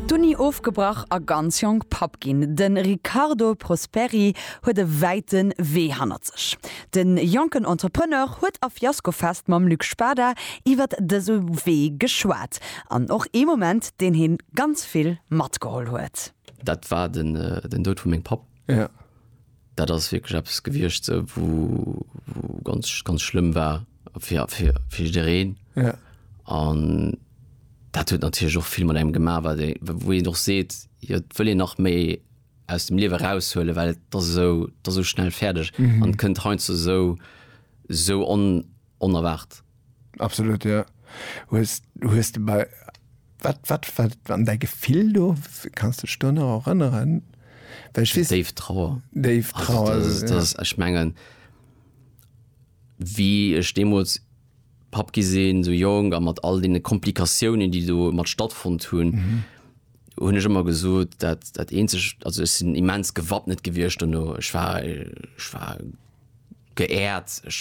D'Uni ofgebrach a ganz jonk Papp ginn. De Riccardo Prosperi huet e wäite Wee hannert sech. De jonken Entrepreneur huet a Fiascofest mam Luc Spada iwwert dëse Wee geschwat an och ee Moment, deen hie ganz vill matgeholl huet. Dat war den Doud vu mengem Papp. Dat ass wierklech eppes gewiescht, wou ganz, ganz schlëmm war fir, fir, fir jiddereen. Ja. An dat huet natierlech och vill mat engem gemaach, wat ee, wou een och seet, jo, et wëll een nach méi aus dem Liewe eraushuelen, well et ass esou, et ass esou schnell fäerdeg an kënnt heiansdo esou, esou on, onerwaart. Absolut jo. Hues hues de bei wat wat wat an däi Gefill do? Kanns de dech do nach erënneren? Well ech weess. Déif Trauer. Déif Trauer. Also dat ass ech mengen wéi ech deemools Papp gi sinn, sou jonk a mat all deene Komplikatiounen déi do mat stattfonnt hunn, hunn ech ëmmer gesot dat dat eenzegt, also ech sinn immens gewappnet gewiescht dono, ech war ech war, Geehrt, ech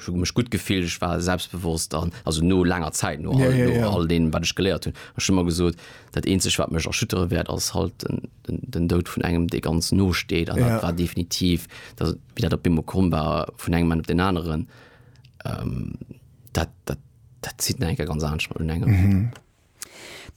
hu mech gutt gefillt, ech war selbstbewosst an, also no laanger Zäit, no all deem, wat ech geléiert hunn. Ech hu mer gesot, dat eenzegt, wat mech erschüttere wäert, ass halt den Doud vun engem, dee ganz no steet. An dat war definitiv, wéi dat op eemol komm war, vun engem Moment op deen aneren, dat zitt nach eng Kéier ganz anescht mat un engem.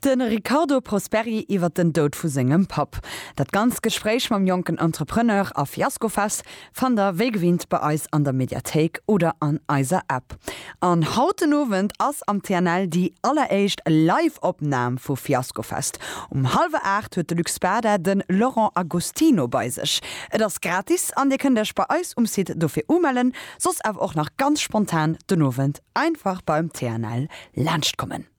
De Riccardo Prosperi iwwer den Doud vu sengem Papp. Dat ganzt Gespréich mam jonken Entrepreneur a Fiaskofest fannt der wéi gewinnt bei eis an der Mediathéik oder an eiser App. An haut den Owend ass am TNL déi alleréischt Live-Opnam vu Fiaskofest. Um hallwer 8 huet de Luc Spada de Laurent Agostino bei sech. Et ass gratis an dir kënnt iech bei eis um Site dofir umellen, soss awer och nach ganz spontan den Owend einfach beim TNL laanschtkommen.